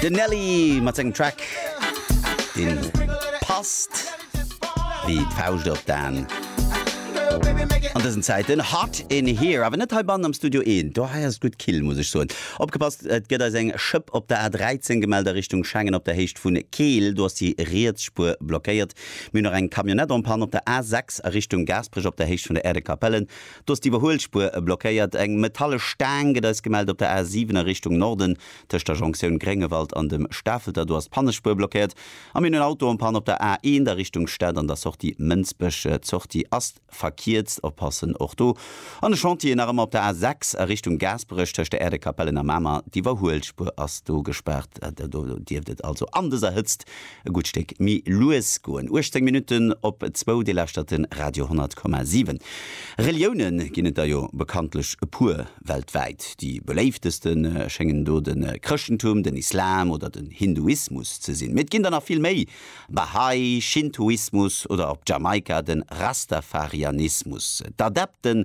Den Nelly mat sengem Track deen passt wéi d'Fauscht op d'Aan an dësen Zäiten. Hot in here, awer net hei bannen am Studio eent, do hei ass et gutt kill muss ech soen. Opgepasst, et gëtt eis eng Schëpp op der A 13 gemellt a Richtung Schengen op der Héicht vun Keel, do ass déi riets Spuer blockéiert. Mir hunn och eng Camionnette en panne op der A 6 a Richtung Gaasperech op der Héicht vun der Aire de Capellen Do ass d'Iwwerhuelspuer blockéiert. Eng metallesch Staang gëtt eis gemellt op der A 7 a Richtung Norden, tëscht der Jonktioun Gréngewald an dem Stafelter. Do ass d'Pannespuer blockéiert a mir hunn en Auto en Panne op der A 1 a Richtung Stad an der Sortie Mënsbech. D'Sortie ass verkierzt, oppassen och do. An de Chantier nach ëmmer op der A 6 a Richtung Gaasperech, tëscht der Äerdekapellen a Mamer. D'Iwwerhuelspuer ass do gespaart. Do dierft et also an dëser Hëtzt E gutt Stéck méi lues goen. 18 Minutten op zwou, Dir lauschtert de Radio 10,7. Relioune ginn et der jo bekanntlech e puer weltwäit. Déi beléifteste schéngen do de Chrëschtentum, den Islam oder den Hinduismus ze sinn. Mee et ginn der nach vill méi, Bahá'í, Schintoismus oder op Jamaika de Rastafarianismus. D'Adepte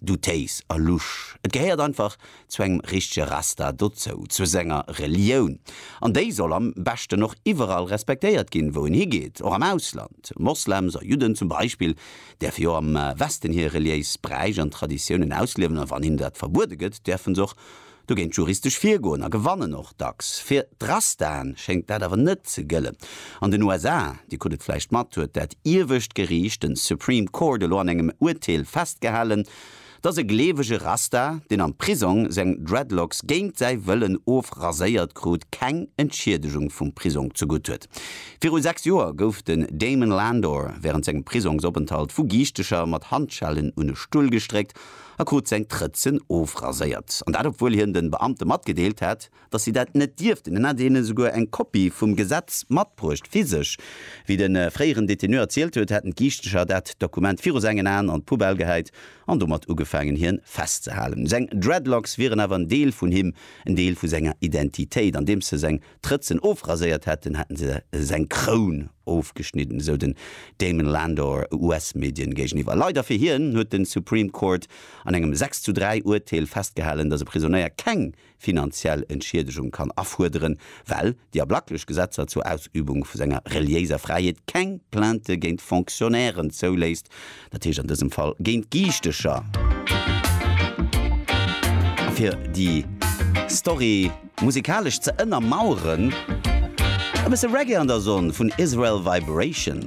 Du Téis a Lusch, et gehéiert einfach zu engem richtege Rasta dozou, zu senger Relioun. An déi soll am beschten och iwwerall respektéiert ginn, wou en higeet, och am Ausland. Moslems a Judden zum Beispill däerfe jo am Westen hir reliéis Bräich an Traditiounen ausliewen, a wann hinnen dat verbuede gëtt, däerfe s'och Do géint juristesch virgoen a gewannen och dacks. Fir d'Rastaen schéngt dat awer net ze gëllen. An den USA, Dir krut et vläicht mat, huet dat iewescht Geriicht, den Supreme Court, elo an engem Urteel festgehalen, dass e gleewege Rasta, deen am Prisong seng Dreadlocks géint säi Wëllen ofraséiert krut, keng Entschiedegung vum Prisong zegutt huet. Viru 6 Joer gouf den Damon Landor wärend sengem Prisongsopenthalt vu Giichtecher mat Handschellen un e Stull gestréckt a krut seng Trëtzen ofraséiert, an dat obwuel hien de Beamte matgedeelt hat, datt si dat net dierften. Hien hat hinnen esouguer eng Kopie vum Gesetz matbruecht, physesch. Wéi de fréieren Détenu erzielt huet, hätten d'Giischteger dat Dokument viru sengen Aen an d'Poubelle gehäit an domat ugefaangen hien festzehalen. Seng Dreadlocks wieren awer en Deel vun him, en Deel vu senger Identitéit, andeems se seng d'Rëtzen ofraséiert hätten, hätten se seng Kroun ofgeschnidden, esou den Damon Landor US-Medien géigeniwwer. Leider fir hien huet de Supreme Court an engem 6 zu 3 Urteel festgehalen, datt e Prisonéier keng finanziell Entschiedegung kann afuerderen, well déi ablaklech Gesetzer zur Ausübung vu senger reliéiser Fräiheet keng Plainte géint Fonctionnairen zouléisst. Dat heescht an dësem Fall géint Giichtecher. A fir déi Story musikalesch ze ënnermaueren, e bësse Reggae an der Sonn vun Israel Vibration.